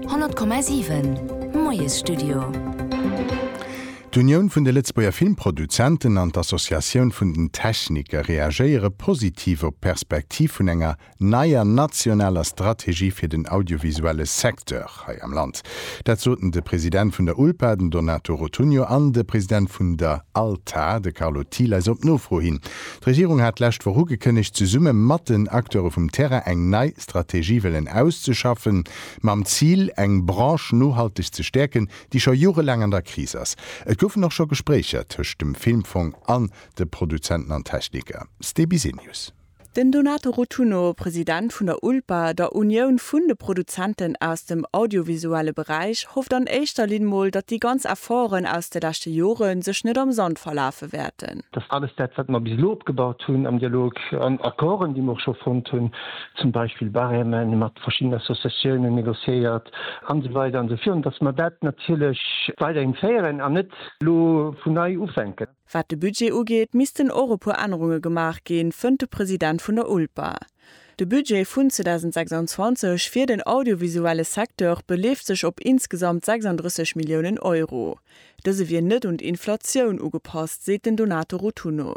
100,7 Moiesstudio. D'Unioun vun de Lëtzebuerger Filmproduzenten an d'Associatioun vun den Techniker reagéiere positiv op d'Perspektiv vun enger neier nationaler Strategie fir den audiovisuelle Secteur hei am Land. Dat soten de President vun der ULPA, den Donato Rotunno, an de President vun der ALTA, de Carlo Thiel, eis op Nofro hin. D'Regierung hat d'lescht Woch ugekënnegt, zesumme mat den Acteure vum Terrain eng nei. d'Strategie wëllen auszeschaffen, mam Zil, eng Branche nohalteg ze stäerken, déi scho jorelaang an der Kris ass. Et goufen och scho Gespréicher tëscht dem Filmfong an de Produzenten an Techniker. Stebisenius. Den Donato Rotunno, President vun der ULPA, der Unioun vun de Produzenten aus dem audiovisuelle Beräich, hofft an éischter Linn mol, datt déi ganz Efforten aus de leschte Jore sech net am Sand verlafe wäerten. Datt alles dat, wat mer bis elo opgebaut hunn am Dialog, an Accorden, déi mer och scho fonnt hunn, zum Beispill Barème mat verschiddenen Associatiounen négociéiert an esou weider an esou virun, dass mer dat natierlech weiderhin féieren an net elo vun nei ufänken. Wat de Budget ugeet, missten och e puer Ännerunge gemaach ginn, fënnt de President vun der ULPA. De Budget vun 2026 fir den audiovisuelle Secteur beleeft sech op insgesamt 36 Milliounen Euro. Dëse wier net un d'Inflatioun ugepasst, seet den Donato Rotunno.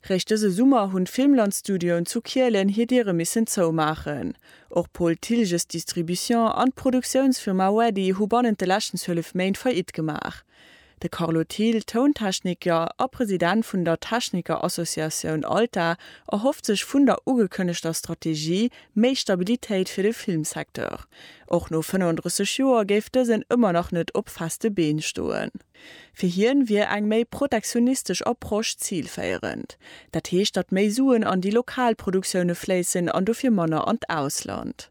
Réischt dëse Summer hunn d'Filmland-Studioen zu Kielen hir Diere missen zoumaachen. Och Paul Thilges Distribution an d'Produktiounsfirma Weddy hu bannent de leschten 12 Méint Faillite gemaach. De Carlo Thill, Tountechniker a President vun der Techniker-Associatioun ALTA, erhofft sech vun der ugekënnegter Strategie méi Stabilitéit fir de Filmsecteur. Och no 35 Joer géif dësen ëmmer nach net op feste Been stoen. Fir hien wier eng méi protektionistesch Approche zilféierend. Dat heescht, datt méi Suen an déi lokal Produktioune fléissen an dofir manner an d'Ausland.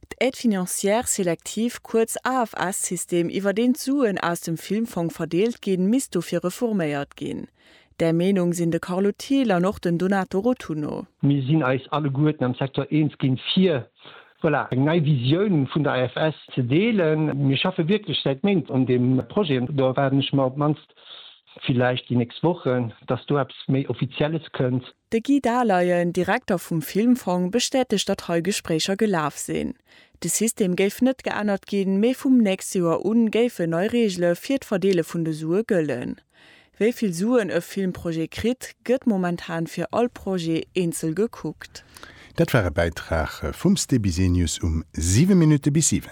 D'Aide financière sélective, kuerz AFS-System, iwwer deen d'Suen aus dem Filmfong verdeelt ginn, misst dofir reforméiert ginn. Där Meenung sinn de Carlo Thiel an och den Donato Rotunno. Mir sinn eis alleguerten am Secteur eens ginn, fir, voilà, eng nei Visioun vun der AFS ze deelen. Mir schaffe wierklech säit Méint un deem Projet an do erwaarden ech mer op d'mannst, villäicht déi nächst Wochen, dass do eppes méi Offizielles kënnt. De Guy Dahleyen, Direkter vum Filmfong, bestätegt, datt hei Gespréicher gelaf sinn. De System géif net geännert ginn, mee vum nächste Joer u géifen nei Reegele fir d'Verdeele vun de Sue gëllen. Wéi vill Suen e Filmprojet kritt, gëtt momentan fir all Projet eenzel gekuckt. Dat war e Bäitrag vum Ste Bisenius um 7 Minutte bis 7.